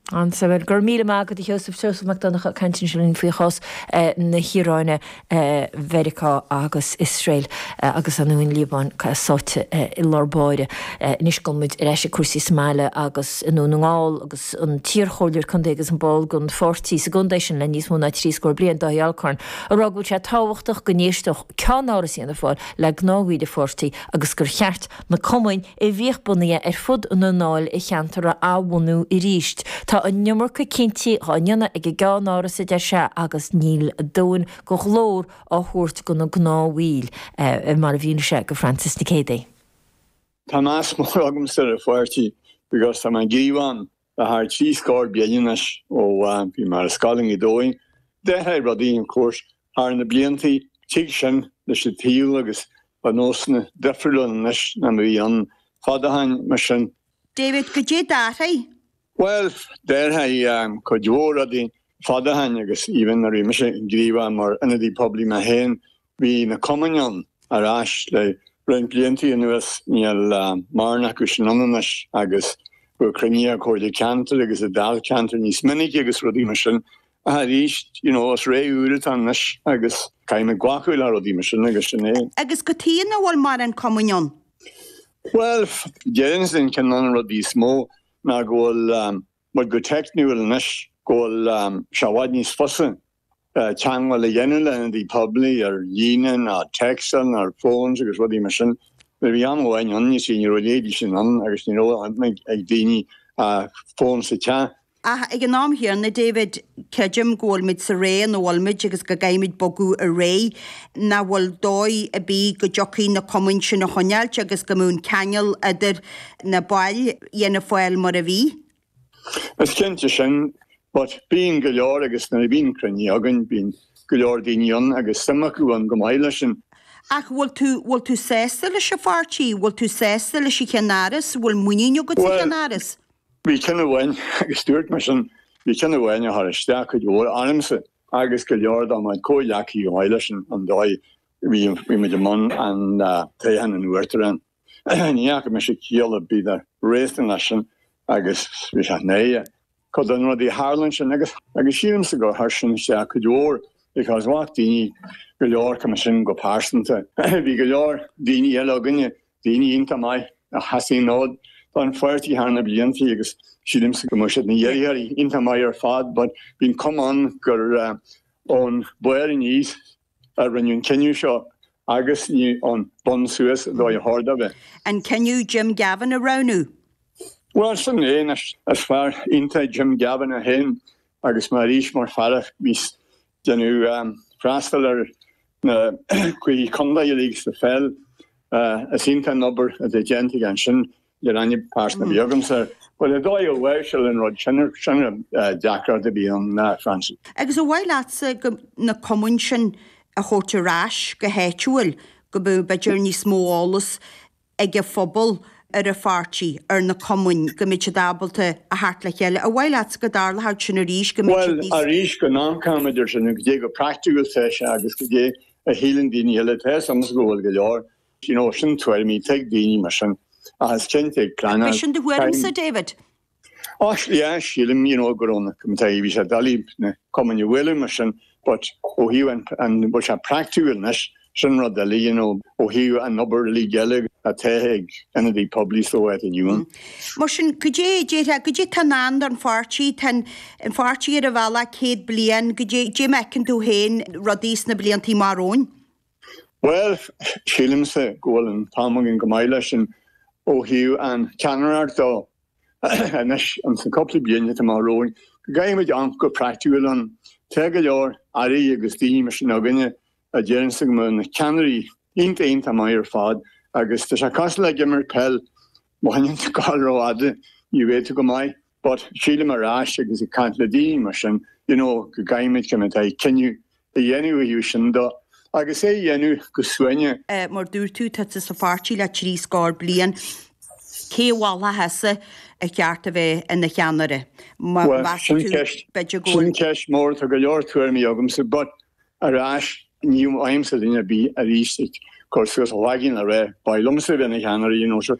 An-suimiúil. Go raibh míle maith agat a Sheosaimh. Seosamh Mac Donncha ag caint ansin linn faoi chás na hIaráine, Mheiriceá agus Iosrael agus an Liobáin sáite i lár báire. Anois gabhfaidh muid ar ais ag cúrsaí sa mbaile agus i nDún na nGall agus an t-iarchomhairleoir contae agus an ball den pháirtí sa gcontae sin le níos mó ná trí scór bliain, Dáithí Alcorn, ag rá go bhfuil sé tábhachtach go n-éisteodh ceannáras Fhianna Fáil le gnáthmhuintir an pháirtí agus gur cheart Na cumainn a bhíodh bunaithe ar fud na ndáilcheantar a athbhunú arís. Tá an iomarca cinntí dhá ndéanamh ag an gCeannáras, a deir sé, agus níl a dhóthain de ghlór á thabhairt do na gnáthbhaill, mar a mhínigh sé do Frances Nic Géadaigh. Tá meas mór agamsa ar an pháirtí because tá mé gníomhach ann Le thar trí scór bliain anois ó bhí mé ar scoil i nGaoth Dobhair, d'athraigh rudaí, of course, thar na bliantaí. Tig sin leis an tsaol agus tá nósanna difriúil ann anois ná mar a bhí ann fad ó shin mar sin. David, cad é a d'athraigh? Bhuel, d'athraigh cuid mhór rudaí fad ó shin agus even nuair a bhí mise gníomhach mar ionadaí poiblí mé féin, Bhí na cumainn ann ar ais le roinnt bliantaí anuas, níl mórán acu sin ann anois agus bheadh cruinniú ag comhairle ceantair agus ag dáilcheantair níos minice agus rudaí mar sin ach arís you know is ré úr atá ann anois agus caithfidh muid glacadh le rudaí mar sin agus sin é. Agus cad chuige nach bhfuil mórán cumainn ann? Bhuel, déarfainnse ceann de na rudaí is mó ná go bhfuil muid go teicniúil anois go bhfuil sé i bhfad níos fusa teagmháil a dhéanamh le ionadaí poiblí ar líne nó ar téacs nó ar phones agus rudaí mar sin. Nuair a bhí am amháin ann, you see, ní raibh a leithéidí sin ann agus ní raibh ag daoine fón sa teach. Ach ag an am chéanna, a David, creidim go bhfuil muid sa ré ina bhfuil muid agus go gcaithfimid bogadh ar aghaidh. Nach bhfuil dóigh ar bith go dtiocfaí na cumainn sin a choinneáilt agus go mbeadh an ceangal idir na baill? Fianna Fáil mar a bhí. Is cinnte sin, but bíonn go leor agus nuair a bhíonn cruinniú againn bíonn go leor daoine ann agus suim acu ann go maith leis sin. Ach bhfuil tú, bhfuil tú sásta leis an pháirtí, bhfuil tú sásta leis an cheannáras, bhfuil muinín agat sa cheannáras? Bhuel, bhí ceann amháin agus dúirt mé sin, bhí ceann amháin a chuir isteach cuid mhór ormsa agus go leor de mo chuid comhghleacaithe go maith leis sin an dóigh bhí muid i mbun an toghchán an Uachtaráin. Ní fhaca mise ciall ar bith ná réasún leis sin agus tá a fhios againn féin cuid de na rudaí a tharla ansin agus sílimse gur chuir sin isteach cuid mhór because ghlac daoine go leor cumainn sin go pearsanta. Bhí go leor daoine eile againne, daoine iontach maith a sheas an fód don pháirtí thar na blianta agus sílimse go mbeadh siad ina iarrthóirí iontach maith ar fad but bhí an cuma ann gur ón bharr aníos a rinne an cinneadh seo agus ní ón bun suas an dóigh ar cheart a bheith. An cinneadh Jim Gavin a roghnú? Bhuel, sin é anois. Is fear iontach Jim Gavin é féin agus mar arís mar fear a bhí ag déanamh freastal ar na cluichí contae uilig sa pheil. Is iontach an obair a bhí déanta aige ansin. ní raibh aithne phearsanta ar bith agamsa air. But an dóigh ar láimhseáladh an rud sin, sin an deacracht a bhí ann, a Francie. Agus ar mhaith leatsa go, na cumainn sin a thabhairt ar ais go háitiúil, go mbeadh, b'fhéidir, níos mó eolas ag an phobal ar an pháirtí, ar na cumainn, go mbeadh siad ábalta a theacht le chéile? Ar mhaith leatsa go dtarlódh sin arís, go mbeadh siad níos. Bhuel, arís, go n-amharcann muid air sin, cad é chomh praiticiúil is atá sé, agus cad é a shíleann daoine eile, tá a fhios agam go bhfuil go leor, You know, sin tuairimí atá ag daoine mar sin, ach is cinnte ag pleanáil. B'é sin do thuairimse, David? Oh, yeah, sílim, you know, go raibh na comtaí, bhí sé doiligh ag na cumainn a bhualadh mar sin, but ó thaobh an, an, bhfuil sé praiticiúil anois, sin rud eile, you know, ó thaobh an obair uilig eile atá ag ionadaí poiblí so ar an Iúin. Mar sin, cad é, déarfá, cad é atá i ndán don pháirtí, tá an, an pháirtí ar an bhealach céad bliain, cad é mar a fheiceann tú féin, rudaí sna blianta amach romhainn. Bhuel, sílimse go bhfuil an t-am againn go maith leis sin ó thaobh an cheannaireacht de. Anois, insa cúpla bliain atá amach romhainn, go gcaithfidh muid amharc go praiticiúil air. Tá go leor Airí agus daoine mar sin againne a déarfainnse go mbeadh na ceannairí iontach iontach maith ar fad agus tá sé cosúil le ag imirt peil, má théann tú ag gabháil rófhada, ní bheidh tú go maith. But sílim arís agus ag caint le daoine mar sin, you know, go gcaithfimid chun atá ag cinneadh a dhéanamh ó thaobh sin de agus é dhéanamh go suaimhneach. Mar dúirt tú, tá tú sa pháirtí le trí scór bliain. Cé a mholfá thusa ar cheart a bheith ina cheannaire? Meas tú, b'fhéidir go. Sin ceist mhór, tá go leor tuairimí agamsa, but arís, ní fheicimse duine ar bith arís ag cur suas a chloigeann le rá, ba mhaith liomsa a bheith ina cheannaire, you know, sure.